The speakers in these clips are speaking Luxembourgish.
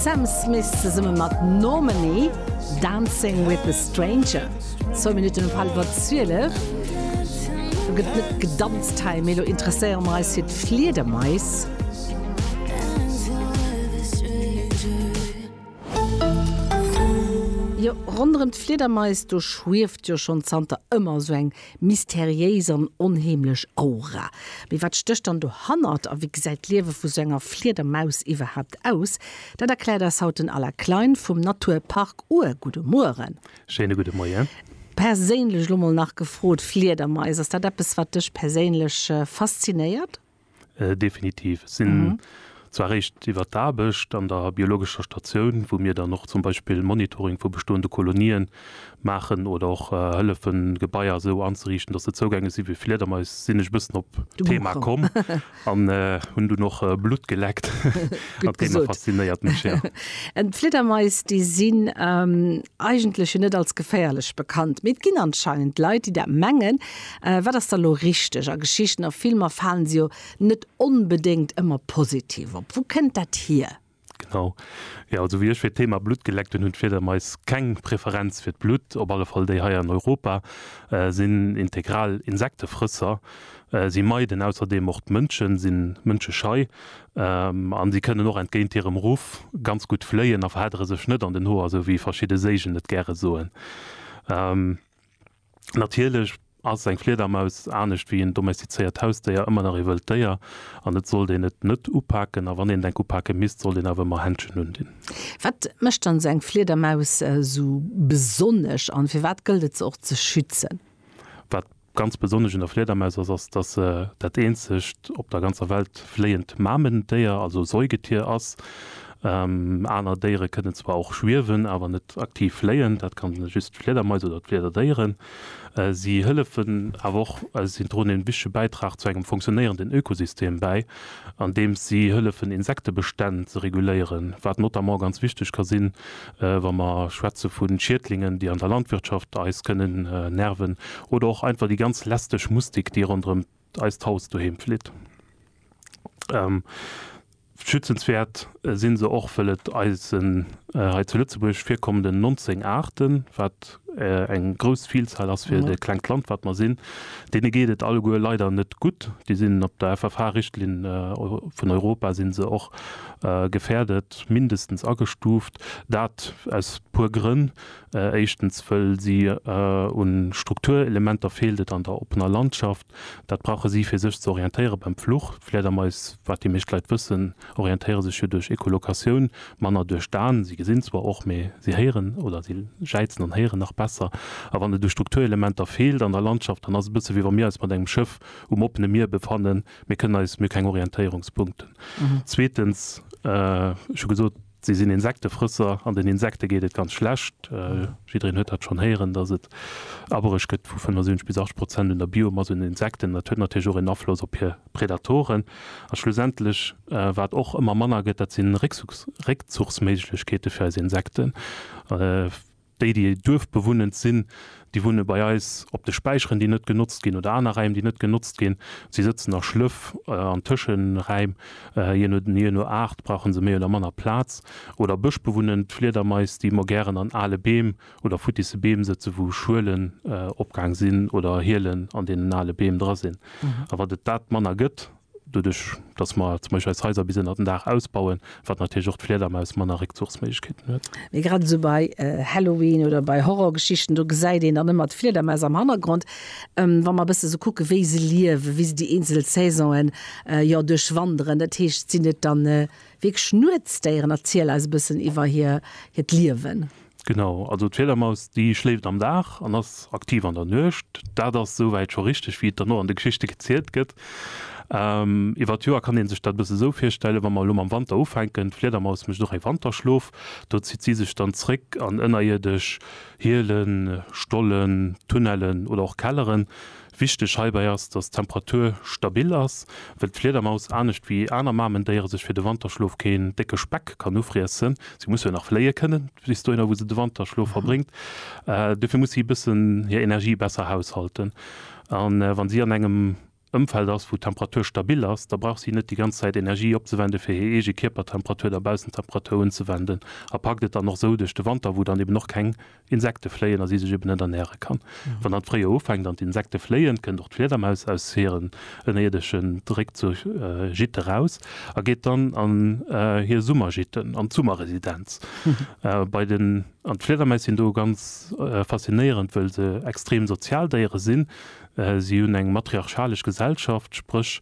Sam Smith zesumme mat Normani, Dancing with a Stranger, zwou Minutten op hallwer 12. Do gëtt net gedanzt hei, mee elo interesséiere mer eis fir d'Fliedermais. Jo, ronderëm d'Fliedermais, do schwieft jo schonn zanter ëmmer esou eng Mysteriéis an onheemlech Aura. Mee wat stécht dann dohannert? A wéi gesäit d'Liewe vu sou enger Fliedermaus iwwerhaapt aus? Dat erkläert eis haut den Alain Klein vum Natur Park Our. Gudde Mueren. Schéine gudde Moien. Perséinlech elo mol nach gefrot, Fliedermais, ass dat eppes wat dech perséinlech faszinéiert? Äh, definitiv. Ech sinn mhm. zwar réischt iwwer d'Aarbecht an der biologescher Statioun, wou mir dann och zum Beispill Monitoring vu bestoende Kolonien maachen oder och äh, hëllefen, Gebaier sou anzeriichten, datt se zougänglech si fir Fliedermais, sinn ech bëssen op d'Thema komm an äh, hunn du noch äh, Blut geleckt. Dat Thema faszinéiert mech. Ja. En Fliedermais, déi sinn ähm, eigentlech net als geféierlech bekannt. Mee et ginn anscheinend Leit, déi dat mengen. Wat ass da lo richteg? A Geschichten a Filmer falen se jo net onbedéngt ëmmer positiv op. Wou kënnt dat hier? Genau. Jo, also wéi ech fir d'Thema Blutt geleckt hunn, hunn d'Fliedermais keng Preferenz fir d'Blutt, op alle Fall déi hei an Europa, sinn integral Insektefrësser. Si meiden ausserdeem och d'Mënschen, si mënscheschei an si kënnen och entgéint hirem Ruff ganz gutt fléien a verheddere sech net an den Hoer, esou wéi verschidde Séigen et gäre soen. Natierlech ass eng Fliedermaus anescht wéi en domestizéiert Hausdéier ëmmer nach ee wëllt Déier an et sollt een et net upaken. A wann een et enk upake misst, sollt een awer ëmmer Händschen undinn. Wat mécht dann esou eng Fliedermaus esou besonnesch an firwat gëllt et se och ze schützen? Wat ganz besonnesch un der Fliedermaus ass, ass dass se dat eenzegt op der ganzer Welt fléiend Mamendéier, also Säugetier, ass. Aner Déiere kënnen zwar och schwiewen, awer net aktiv fléien, dat kann just d'Fliedermais oder d'Fliederdéieren. Si hëllefen awer och, also si droen en wichtege Bäitrag zu engem funktionéierenden Ökosystem bäi, andeems si hëllefen Insektebestänn ze reguléieren, wat notamment ganz wichteg ka sinn, wa mer schwätze vu Schiedlingen, déi an der Landwirtschaft eis kënnen nerven, oder och einfach déi ganz lästeg Mustik, déi ronderëm eist Haus doheem flitt. Schützenswäert sinn se och wëll et eisen hei zu Lëtzebuerg virkommenden 19 Aarten, wat eng grouss Vielzahl ass fir de klengt Land wat mer sinn. Deene geet et alleguer leider net gutt. Déi sinn op der FFH-Richtlinn vun Europa sinn se och gefährdet, mindestens agestuuft. Dat aus puer Grënn. Éischtens wëll si un Strukturelementer feelt et an der oppener Landschaft. Dat brauche si fir sech ze orientéiere beim Fluch. D'Flädermais, wat déi meescht Leit wëssen, orientéiere sech jo duerch Echolokatioun, manner duerch d'An. Si gesinn zwar och, mee si héieren oder si jäizen an héieren nach besser. A wann et u Strukturelementer feelt an der Landschaft, dann ass et e bësse wéi wa mir eis mat engem Schëff um oppene Mier befannen, mir kënnen eis, mir hu keng Orientéierungspunkten. Zweetens, ech hu gesot, Si sinn Insektefrësser an den Insekte geet et ganz schlecht. Jiddereen huet dat schonn héieren, datt et abereg gëtt vu 75 bis 80 Prozent un der Biomass un Insekten. Dat huet natierlech och een Afloss op hir Predatoren. A schlussendlech, wat och ëmmer manner gëtt, dat si Réckzuchsméiglechkeete fir eis Insekten. Déi, déi duerfbewunnend sinn, déi wunne bei eis op de Späicheren, déi net genotzt ginn, oder aner Räim, déi net genotzt ginn. Si sëtzen a Schlëff an Tëscheräim, jee no Aart brauche se méi oder manner Plaz. Oder bëschbewunnend Fliedermais, déi mo gären an ale Beem oder futtisse Beem sëtzen, wou Schuelen opgaang sinn oder Hielen an deenen ale Beem dra sinn. A wat et dat manner gëtt, doduerch datt mer zum Beispill eis Haiser bis ënner den Daach ausbauen, wat natierlech och d'Fliedermaus manner Réckzuchsméiglechkeeten huet. Mee grad esou bei Halloween oder bei Horrorgeschichten, do gesäit een dann ëmmer d'Fliedermaus am Hannergrond, wa mer e bësse sou kucken, wéi se liewen, wéi se déi eenzel Saisonen, jo, duerchwanderen. Dat heescht, sinn et da wierklech Nuetsdéieren? Erziel eis e bëssen iwwer hiert Liewen. Genau, also d'Fledermaus déi schléift am Dag an ass aktiv an der Nuecht. Dat ass souwäit scho richteg, wéi et dann och an de Geschichte gezielt gëtt. Iwwer d'Joer kann ee sech dat e bësse sou virstellen, wa mer elo mam Wanter ufänken, d'Fledermaus mécht och e Wanterschlof, do zitt si sech dann zréck an ënnerierdesch Hielen, Stollen, Tunnellen oder och Kelleren, Wichteg heibäi ass, dass d'Temperatur stabil ass, wëll d'Fliedermaus anescht wéi aner Mamendéiere sech fir de Wanterschlof keen décke Speck kann ufriessen. Si muss jo nach fléie kënnen bis dohinner, wou se de Wanterschlof verbréngt. Dofir muss si e bëssen hir Energie besser haushalten. A wann si an engem Ëmfeld ass, wou d'Temperatur stabil ass, da brauch si net déi ganz Zäit Energie opzewenden, fir hir eege Kierpertemperatur der Baussentemperatur unzewenden a packt et dann och esou duerch de Wanter, wou dann eben och keng Insekte fléien a si sech eben net ernäre kann. Wann dann d'Fréijoer ufänkt an d'Insekte fléien, kënnt och d'Fliedermaus aus hiren ënnerierdeschen Réckzuch, Gîte, eraus a geet dann an hir Summergîte, an d'Summerresidenz bei den. An d'Fliedermais sinn do ganz faszinéierend, wëll se extrem sozial Déiere sinn. Si hunn eng matriarchalesch Gesellschaft, spréch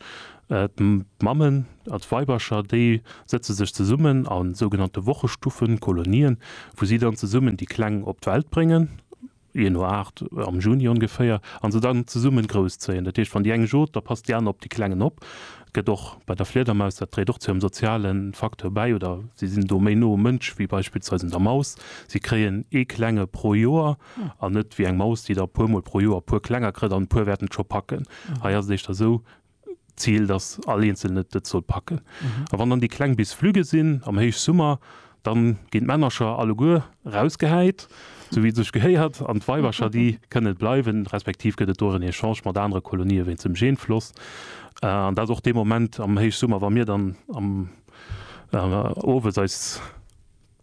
d'Mammen, Als Weibercher, déi sëtze sech zesummen a sougenannte Wochestuffen, Kolonien, wou si dann zesummen déi Kleng op d'Welt bréngen, jee no Aart, am Juni ongeféier, a se dann zesummen grouss zéien. Dat heescht, wann déi eng jot, da passt déi aner op déi Klengen op. Gëtt och bei der Fliedermaus, dat dréit och zu hirem soziale Facteur bäi, oder si sinn do méi no um Mënsch wéi beispillsweis un der Maus. Si kréien ee Klenge pro Joer an net wéi eng Maus, déi der e puer mol pro Joer e puer Klenger kritt an e puer wäerten et scho packen. Hei ass et éischter esou, D'Zil, dass all Eenzelne dat soll packen. A wann dann déi Kleng bis flügge sinn am Héichsummer, da ginn d'Männercher alleguer rausgehäit, sou wéi et sech gehéiert, an d'Weibercher, déi kënne bleiwen, respektiv gëtt et do en Echange mat anere Kolonien wéinst dem Genfloss. An dat ass och dee Moment am Héichsummer, wa mir dann am owes eis.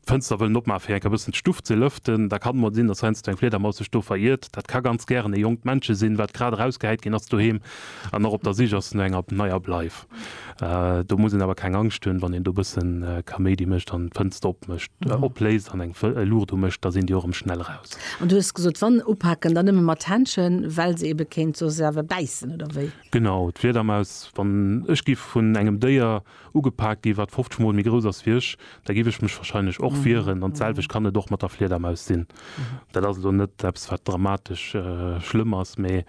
D'Fënster wëllen opmaachen, fir enker e bëssen d'Stuff ze lëften. Da kann et mol sinn, dass heiansdo eng Fliedermaus sech do veriirt. Dat ka ganz gären e jonkt Männche sinn, wat grad erausgehäit ginn ass doheem an och op der Sich ass no enger neier Bleif. Do muss een awer keng Angscht hunn, wann een do e bësse Kaméidi mécht an d'Fënster opmécht, opléist an eng Luucht umécht, da sinn déi och erëm schnell eraus. An du hues gesot, wann upaken, dann nëmme mat Händschen, well se ebe kéint soss awer bäissen, oder wéi? Genau, d'Fliedermaus, wann ech giff vun engem Déier. ugepaakt gi wat 50 mol méi grouss ass wéi ech, da giff ech mech wahrscheinlech och wieren an d'selwecht kann et och mat der Fliedermaus sinn. Dat ass elo net eppes wat dramatesch schlëmm ass, mee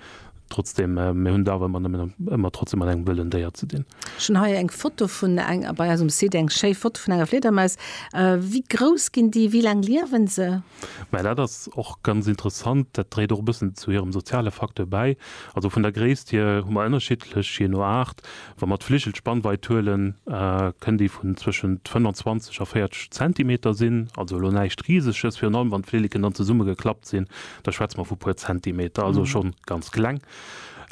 trotzdem mir hunn et awer ëmmer nëmmen ëmmer trotzdem mat engem wëllen Déier ze dinn. Ech hunn hei eng Foto vun eng bei eisem Site eng schéi Foto vun enger Fliedermaus. Wéi grouss ginn déi? Wéi laang liewen se? Mä dat ass och ganz interessant, dat dréit och e bëssen zu hirem soziale Facteur bäi. Also vun der Gréisst hier hu mer ënnerschiddlech, jee no Aart, Wa mer d'Fligelspannweit huelen, kënnt déi vun zwëschent 25 a 40 Zentimeter sinn, also elo näischt Riseges. Virun allem wann d'Flilleken dann zesumme geklappt sinn, da schwätze mer vu puer Zentimeter, also schonn ganz kleng.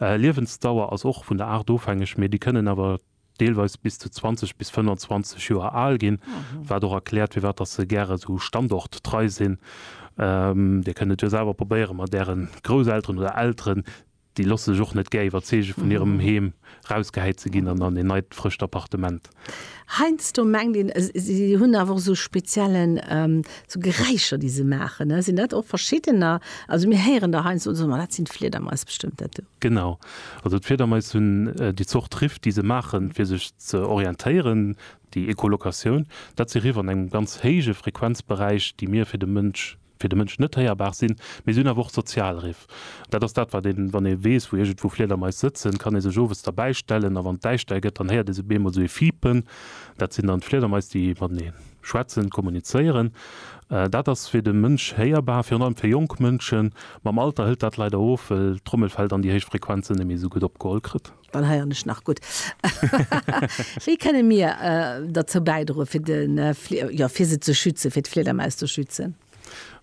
Liewensdauer ass och vun der Aart ofhängeg, mee déi kënnen awer deelweis bis zu 20 bis 25 Joer al ginn, wat och erkläert firwat dass se gäre esou standorttrei sinn. Dir kënnt et jo selwer probéieren, mat ären Grousselteren oder Elteren Déi losse sech och net gär iwwerzeege vun hirem Heem rausgehäit ze ginn an an een neit, frëscht Appartement. Heiansdo mengt een, si hunn awer och esou speziellen, esou Geräischer, déi se maachen, ne? Sinn dat och verschiddener? Also mir héieren da heiansdo oder sou, ma dat sinn d'Fliedermais bestëmmt, dat do. Genau. Also d'Fliedermais hunn déi Zort Riff, déi se maachen, fir sech ze orientéieren, déi Echolocatioun, dat si Riff an engem ganz héije Frequenzberäich, déi mir fir de Mënsch fir de Mënsch net héierbar sinn, mee se hunn awer och Sozialriff. Dat ass dat, wat een, wann ee weess, wou iergendwou Fliedermais sëtzen, kann ee sech owes derbäi stellen a wann et däischter gëtt, dann héiert ee se op eemol esou ee Fiipen, dat sinn dann d'Fliedermais, déi matenee schwätzen, kommunizéieren. Dat ass fir de Mënsch héierbar, virun allem fir jonk Mënschen. Mam Alter hëlt dat leider of, well d'Trommelfell dann déi héich Frequenzen net méi esou gutt opgeholl kritt. Dann heieren ech nach gutt. Wéi kënne mir derzou bäidroen, fir de, jo, fir se ze schützen, fir d'Fliedermaus ze schützen?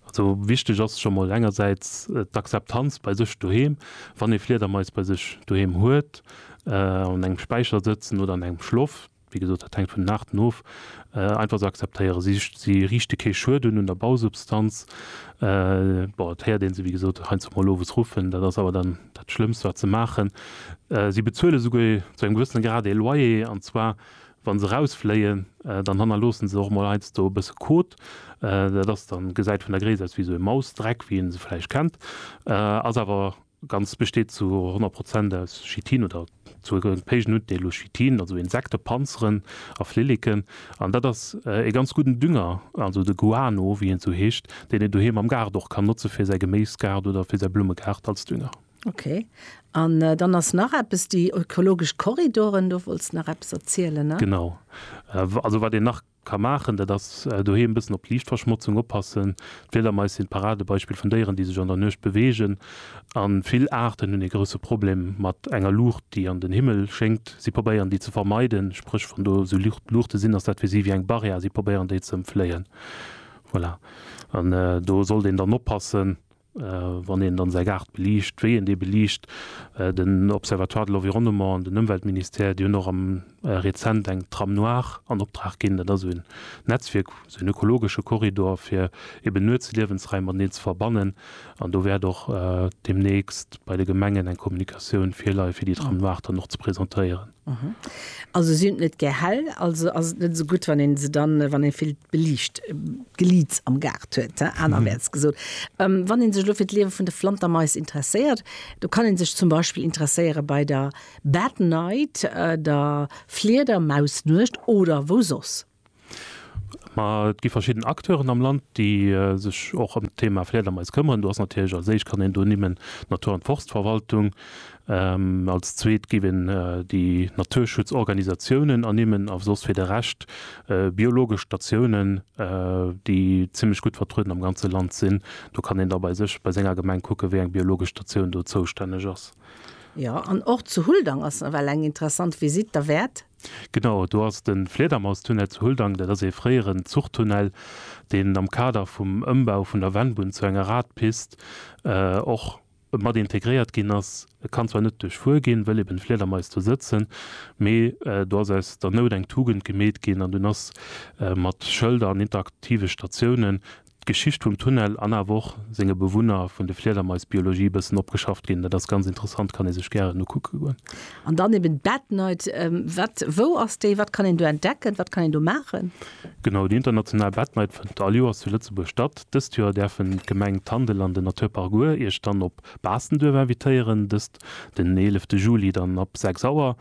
Also wichteg ass scho mol engersäits d'Akzeptanz bei sech doheem. Wann ee Fliedermais bei sech doheem huet, an engem Späicher sëtzen oder an engem Schloft, Wéi gesot, dat hänkt vun den Aarten of. Einfach ze akzeptéieren, si riichte kee Schued un un der Bausubstanz. Bon, et héiert ee se wéi gesot heiansdo emol owes ruffen, dat ass awer dann dat Schlëmmst, wat se maachen. Si bezuele souguer zu engem gewëssene Grad ee Loyer, an zwar wa se erausfléien, dann hannerloosse se och emol heiansdo e bësse Kot. Dat ass dann, gesäit vun der Gréisst aus wéi esou e Mausdreck, wéi ee se vläicht kennt, ass awer D'Ganzt besteet zu 100 Prozent aus Chitin oder zu e gëllenpéigen Undeel u Chitin, also Insektepanzeren a Flilleken. An dat ass ee ganz gudden Dünger, also de Guano, wéi en esou heescht, deen een doheem am Gaart och kann notze fir säi Geméisgaart oder fir säi Blummegaart als Dünger. Ok. An dann ass nach eppes, déi ökologesch Korridoren, do wollts nach eppes erzielen, ne? Genau. Also wat een nach ka maachen, dat ass doheem e bëssen op d'Liichtverschmotzung oppassen. D'Fliedermais sinn d'Paradebeispill vun Déieren, déi sech an der Nuecht beweegen. A vill Aarten hunn ee grousse Problem mat enger Luucht, déi an den Himmel schéngt. Si probéieren, déi ze vermeiden, spréch wann do esou Luuchte sinn, ass dat fir si wéi eng Barrière a si probéieren, déi ze ëmfléien. Voilà. An do sollt een dann oppassen. Wann een dann säi Gaart beliicht, wéi een dee beliicht, den Observatoire de l'Environnement an den Ëmweltministère, déi hunn och am rezent eng Tram noire an Optrag ginn. Dat ass esou en Netzwierk, esou en ökologesche Korridor, fir eben nuets Liewensraim mateneen ze verbannen. An do wäert och deemnächst bei de Gemengen eng Kommunikatioun virleie fir déi Tram noire dann och ze presentéieren. Also si hunn net gär hell, also ass et net esou gutt wann een se dann, wann ee vill beliicht Geliits am Gaart huet, he, anerwäerts gesot. Wann een sech elo fir d'Liewe vun de Flantermais interesséiert, do kann een sech zum Beispill interesséiere bei der Bad Night, der Fliedermausnuecht oder wou soss. Ma et gi verschidden Acteuren am Land, déi sech och ëm d'Thema Fliedermais këmmeren. Do ass natierlech als éischt kann een do nimmen d'Natur an d'Forstverwaltung. Als zweet géif een déi Naturschutzorganisatiounen ernimmen a soss fir de Rescht biologesch Statiounen, déi zimmlech gutt vertrueden am ganze Land sinn. Do kann een da bei sech bei senger Gemeng kucke wéi eng biologesch Statioun do zoustänneg ass. Jo, an och zu Huldang ass nawell eng interessant Visite derwäert. Genau do ass de Fliedermaustunnel zu Huldang. Dat ass ee fréieren Zuchtunnel, deen am Kader vum Ëmbau vun der Vennbunn zu enger Radpist och mat integréiert ginn ass. E kann zwar net duerchfuer ginn, wëll eben Fliedermais do sëtzen, mee do ass aus der Nout eng Tugend gemeet ginn an dunn ass mat Schëlder an interaktive Statiounen d'Geschicht vum Tunnel an awer och senge Bewunner vun de Fliedermaisbiologie e bëssen opgeschafft ginn. Dat ass ganz interessant, kann ee sech gären ukucke goen. An dann eben d'Bad Night, wat, wou ass déi, wat kann een do entdecken, wat kann een do maachen? Genau, déi international Bad Night fënnt all Joers zu Lëtzebuerg statt. Dëst Joer däerfen d'Gemeng Tandel an den Naturpark Our Iech dann op op Baastenduerf invitéieren, dëst den 11 Juli dann ab 6 Auer.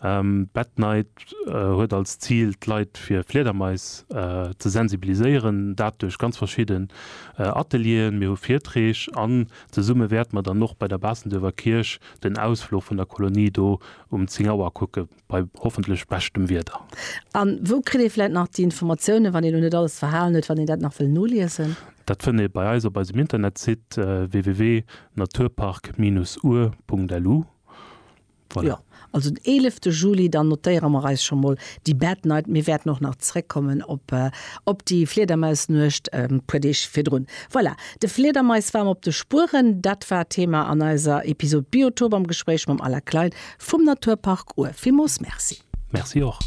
D'Bad Night huet als Zil d'Leit fir Fliedermais ze sensibiliséieren, dat duerch ganz verschidden Atelieren, mir hu Virträg an zesumme wäerte mer dann och bei der Baastenduerfer Kierch den Ausfluch vun der Kolonie do um 10 Auer kucke bei hoffentlech beschtem Wieder. A wou kritt ee vläit nach déi Informatiounen, wann een elo net alles verhalen huet, wann een dat nach wëll noliesen? Dat fënnt ee bei eis op eisem Internetsite www.naturpark-our.lu. Voilà. Jo, also den eelefte Juli, dann notéiere mer eis scho mol déi Bad Night. Mir wäerten och nach zréckkommen op, op déi Fliedermausnuecht e puer Deeg virdrun. Voilà. De Fliedermais war mer op de Spueren, dat war d'Thema an eiser Episod Biotop am Gespréich mam Alain Klein vum Naturpark Our. Villmools Merci! Merci och!